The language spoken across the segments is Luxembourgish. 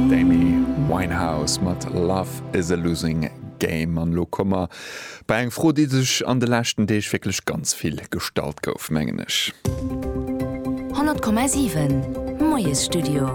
D'Amy Winehouse mat Love is a losing game. An elo komme mer bei eng Fro, déi sech an de leschten Deeg wierklech ganz vill gestallt gouf, mengen ech. 100,7 Moiesstudio.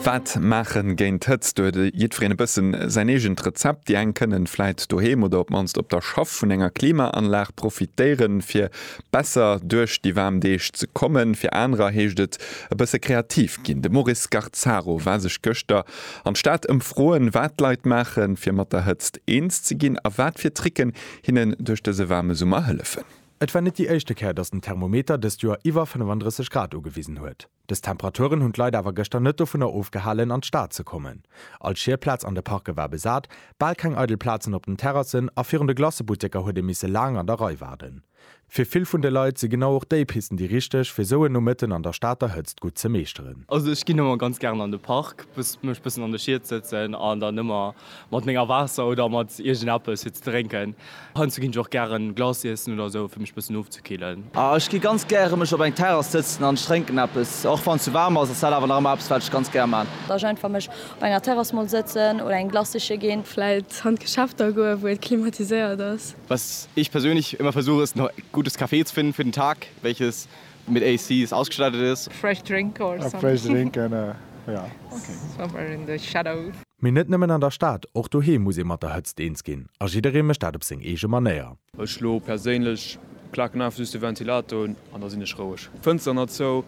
Wat maachen géint d'Hëtzt? Do huet jiddwereen e bëssen säin eegent Rezept. Déi eng kënnen vläit doheem oder op d'mannst op der Schaff vun enger Klimaanlag profitéieren, fir Besser duerch déi waarm Deeg ze kommen, fir anerer heescht et e bësse kreativ ginn. De Maurice Garzaro war sech gëschter an d'Stad ëmfroen, wat d'Leit maachen, fir mat der Hëtzt eens ze ginn a wat fir Tricken hinnen duerch dëse waarme Summer hëllefen. Et war net déi éischte Kéier, datt den Thermometer dëst Joer iwwer 35 Grad ugewisen huet. Dës Temperaturen hunn d'Leit awer gëschter net dovunner ofgehalen, an d'Stad ze kommen. All Schierplaz an de Parke war besat, bal keng eidel Plazen op den Terrassen a virun de Glacebutteker huet ee misse laang an der Rei waarden. Fir vill vun de Leit si genau och déi Pisten déi richteg, fir esou en Nomëtten an der Stater Hëtzt gutt ze meeschteren. Also ech ginn ëmmer ganz gären an de Park, mech bëssen an de Schied sëtzen an dann ëmmer Mat menger Waasser oder mat iergend eppes fir ze drénken. Heiansdo ginn ech och gären Glace iessen oder esou, fir mech e bëssen ofzekillen. Ah, ech gi ganz gäre mech op eng Terrass sëtzen an ech drénken eppes, och wann et ze waarm ass, ass dat awer nach ëmmer eppes, wat ech ganz gär maan. Datt ech einfach mech op enger Terrass mol sëtzen oder eng Glace siche ginn. Vläit an d'Geschäfter goen, wou et klimatiséiert ass. Was ich persönlich immer versuche, ist, noch gutes Kaffee zu finden für den Tag, welches Mit ACs ausgestattet is. Fresh drink or something. Fresh drink and a ja okay. Somewhere in the shadow. Mee net nëmmen an der Stad, och doheem muss ee mat der Hëtzt eens ginn a jidderee mécht dat op seng eege Manéier. Ech elo perséinlech klaken einfach just de Ventilator un an da sinn ech roueg. Fënster nach zou,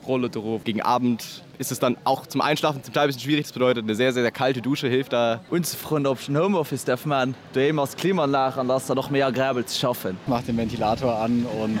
roll et erof. Gegen Abend ist es dann auch zum Einschlafen zum Teil bisschen schwierig, das bedeutet eine sehr sehr sehr kalte Dusche hilft da. Unzefroen op ech den Homeoffice därf man. Doheem ass d'Klimaanlag an da ass dann och méi agreabel ze schaffen. Mach den Ventilator an und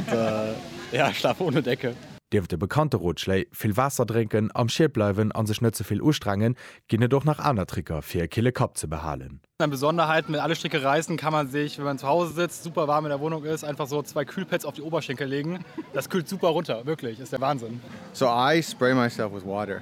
ja, schlaf ohne Decke. Nieft de bekannte Rotschléi, vill Waasser drénken, am Schied bleiwen a sech net ze vill ustrengen, ginn et och nach aner Tricker fir e kille Kapp ze behalen. An Besonderheiten, Mit alle Stricke reißen kann man sich, wenn man zu Hause sitzt, super warm in der Wohnung ist, einfach so zwei Kühlpads auf die Oberschenkel legen. Das kühlt super runter, wirklich, ist der Wahnsinn. So I spray myself with water.